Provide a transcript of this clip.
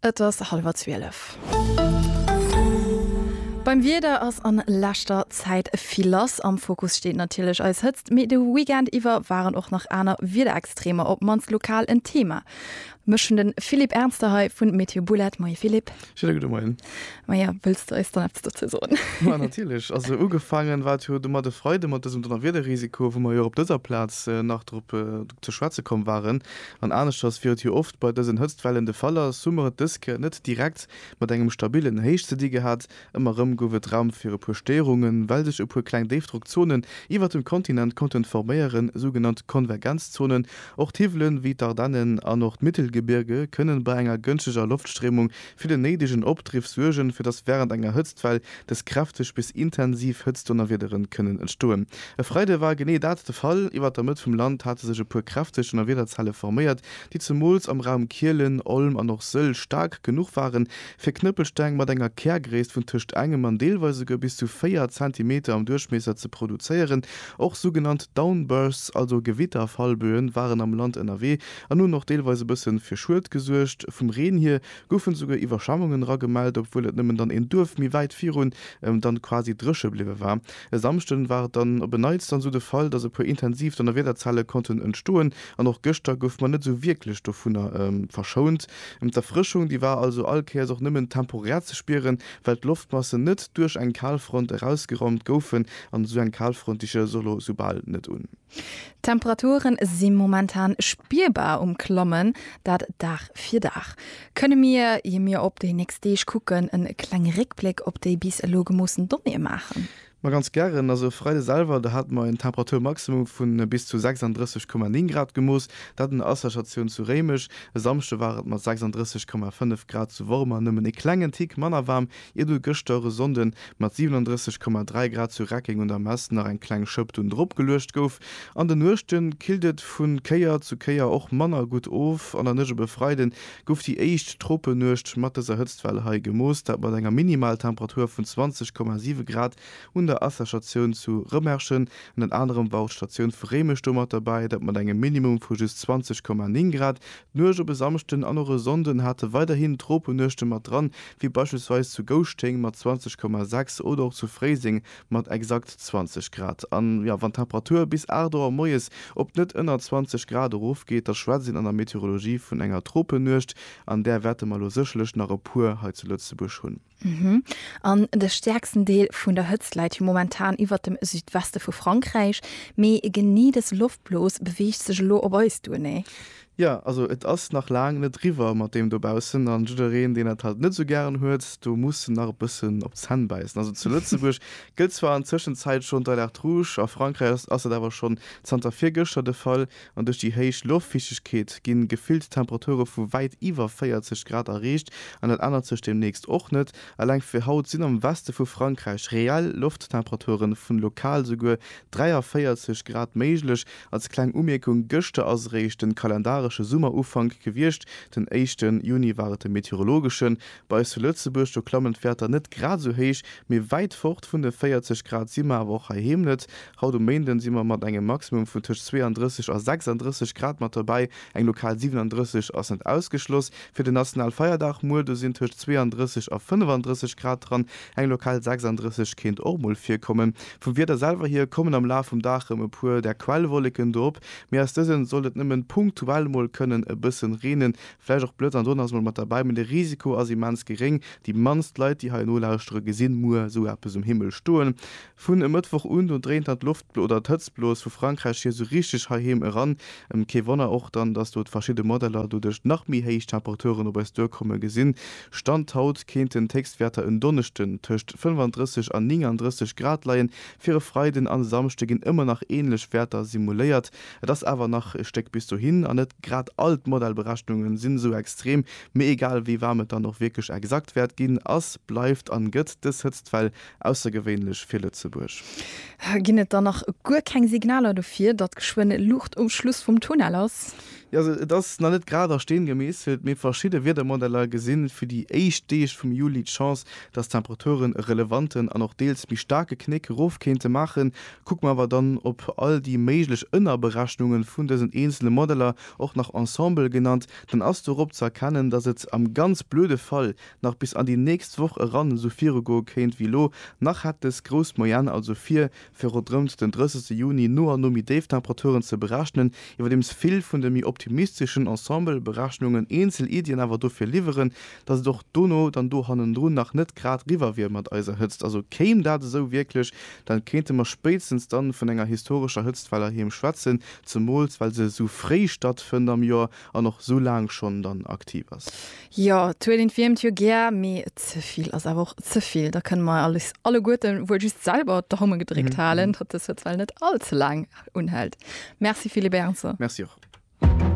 Et ass hallwer 12. Beim Wieder ass an leschter Zäit vill lass. Am Fokus steet natierlech eis Hëtzt, mee de Weekend iwwer waren och nach aner Wiederextremer op d'mannst lokal en Thema. Mech hunn de Philippe Ernster hei vu Météo Boulard. Moie Philippe. Schöne gudde Moien. Maja, wëlls de eis dann eppes dozou soen? Ma natierlech. Also ugefaangen war et jo domat e Freide mat dësem Donnerwiederrisiko, wou mer jo och op dëser Plaz nach drop ze schwätze komm waren. An aneschters wéi et jo oft bei dësen Hëtztwellen de Fall ass, hu mer et dës Kéier net direkt mat engem stabillen Héich ze di gehat. Ëmmer erëm gouf et Raum fir e puer Stéierungen, well sech e puer kleng Déifdrockzonen iwwert dem Kontinent konnten forméieren, sougenannt Konvergenzzonen. Och d'Hiwwelen, wéi d'Ardennen an och d'Mittelgebirge, kënnen bei enger gënschteger Loftstréimung fir den néidegen Opdriff suergen, fir dass während enger Hëtztwell dës kräfteg bis intensiv Hëtztdonnerwiederen kënnen entstoen. E Freide war genee dat de Fall. Iwwert der Mëtt vum Land hate sech e puer kräfteg Donnerwiederzelle forméiert, déi zemools am Raum Kielen, Olm an och Sëll staark genuch waren, fir Knëppelsteng mat enger Kärgréisst vun tëscht engem an deelweis esouguer bis zu 4 Zentimeter am Duerchmiesser ze produzéieren. Och sougenannt Downbursts, also Gewitterfallböen, waren am Land ënnerwee, an hunn och deelweis e bëssen fir Schued gesuergt. Vum Reen hier goufen esouguer Iwwerschwemmungen era gemellt, obwuel et nëmmen dann een Duerf méi wäit virun dann quasi dréche bliwwe war. E Samschden war et dann op en Neits dann esou de Fall, dass e puer intensiv Donnerwiederzellen konnten entstoen an och gëschter goufe mer net esou wierklech dovunner verschount. D'Erfrëschung déi war also all Kéiers och nëmmen temporär ze spieren, well d'Loftmassen net duerch eng Kalfront erausgeraumt goufen an esou eng Kalfront déi stellt sech och elo esou bal net un. D'Temperature si momentan spierbar um Klammen, dat Dag fir Dag. Kënne mir, ier mir op déi nächst Deeg kucken, e klenge Réckbléck op déi bis elo gemoossen Donnéeë maachen? Ma ganz gären. Also e Freide selwer, do hate mer en Temperaturmaximum vu bis zu 36,9 Grad gemooss, dat un der Asserstatioun zu Réimech. E Samschde war et mat 36,5 Grad zu Wormer nëmmen e klengen Tick manner waarm Iert et gëschter e Sonnden mat 37,3 Grad zu Reckeng un der Mess nach eng kleng Schëpp dunn drop geluecht gouf, an de Nuechte killt et vu Kéier zu Kéier och manner gutt of. An der Nuecht op e Freide gouf déi éischt Tropenuecht mat dëser Hëtztwell hei gemooss, dat mat enger Minimaltemperatur vun 20,7 Grad un der Asserstatioun zu Rëmerschen. Ënnert anerem war och d'Statioun vu Réimech do mat derbäi, dat mat engem Minimum vu just 20,9 Grad. D'Nuecht op e Samschden an och e Sonnden hate weiderhin Tropenuechte mat dran, wéi beispillsweis zu Gouschteng mat 20,6 oder och zu Fréiseng mat exakt 20 Grad. A jo, wann d'Temperatur bis 8 Auer moies op net ënner 20 Grad erofgeet, da schwätzt een an der Meteorologie vun enger Tropenuecht. An där wäerte mer elo sécherlech nach e puer hei zu Lëtzebuerg hunn. An de stäerksten Deel vun der Hëtzt läit jo momentan iwwert dem Südweste vu Frankräich, mee genee dës Loftblos beweegt sech elo op eis duer, nee? Jo, also et ass nach laang net riwwer mat deem dobaussen, an jiddereen, deen dat halt net esou gären huet, do muss en nach e bëssen op d'Zänn bäissen. Also zu Lëtzebuerg gëllt zwar an Tëschenzäit schonn d'Alerte rouge, a Frankräich ass dat awer schonn zanter virgëschter de Fall, An duerch déi héich Loftfichtegkeet gi gefillt Temperature vu wäit iwwer 40 Grad erreecht an dat ännert sech deemnächst och net. Eleng fir haut sinn am Weste vu Frankräich reell Lofttemperature vun lokal esouguer 43 Grad méiglech. Als kleng Umierkung, Gëschter ass eréischt de kalendaresche Summerufank gewiescht, den éischte Juni war et de meteorologeschen. Bei eis zu Lëtzebuerg, do klammen d'Wäerter net grad esou héich, mee wäit fort vun de 40 Grad si mer awer och heiheem net. Haut um Méinden si mer mat engem Maximum vun tëscht 32 a 36 Grad mat dobäi, eng lokal 37 ass net ausgeschloss. Fir den Nationalfeierdag muer, do sinn tëscht 32 a 35 Grad dran, eng lokal 36 kéint och mol virkommen. Vum Wieder selwer hier kommen am Laf vum Dag rem e puer där Quellwolleken do op, mee aus dësen sollt et nëmmen punktuell mol kënnen e bëssen reenen, vläicht och Blëtz an Donner ass mol mat derbäi, mee de Risiko ass immens geréng. Déi mannst Leit déi hei elo lauschteren gesinn muer esou eppes um Himmel stoen. Vun e Mëttwoch un, do dréint dann d'Loft oder d'Hëtztblos vu Frankräich hier sou richteg heiheem eran. Kee Wonner och dann, dass do d'verschidde Modeller doduerch nach méi héich Temperaturen op eis duerkomme gesinn. Stand haut kéinten d'Héchstwäerter en Donneschden tëscht 35 an 39 Grad leien. Fir e Freiden an e Samschde ginn ëmmer nach änlech Wäerter simuléiert. Et ass awer nach e Stéck bis dohin an net grad all d'Modellberechnunge sinn esou extrem. Mee egal wéi waarm et dann och wierklech exakt wäert ginn, ass, bleift an gëtt dës Hëtztwell Aussergewéinlech fir Lëtzebuerg. Ginn et dann nach guer keng Signaler dofir, datt geschwënn Luucht um Schluss vum Tunnel ass? Jo, et ass nach net grad a Steen gemeesselt, mee verschidde Wiedermodeller gesi fir déi éischt Deeg vum Juli d'Chance, datt d'Temperaturen e relevanten an och deels méi staarke Knéck erof kéinte maachen. Kucke mer awer dann op all déi méiglech Ënnerberechnunge vun dësen eenzele Modeller, och nach Ensemble genannt, dann ass dorop ze erkennen, datt et am ganz blöde Fall nach bis an déi nächst Woch eran esou virugoe kéint wéi elo, nach hätt dës grouss Moyenne also vir, fir ronderëmt den 30 Juni no an no méi déif Temperaturen ze berechnen, iwwerdeems vill vun de méi optimisteschen Ensemble-Berechnungen eenzel Iddien awer dofir liwweren, datt et och dono dann do hannendrun nach net grad riwwer wier mat eiser Hëtzt. Also kéim dat esou wierklech, dann kéinte mer spéitstens dann vun enger historescher Hëtztwell erheem schwätzen, zemools well se esou fréi stattfënnt am Joer, an och sou laang schonn dann aktiv ass. Jo, d'Huelin wiermt jo gär, mee ze vill ass awer och ze vill. Da kënne mer eis alleguerten wuel just selwer d'Daume gedréckt halen, datt dës Hëtzwell net all ze laang unhält. Merci Philippe Ernzer. Merci och.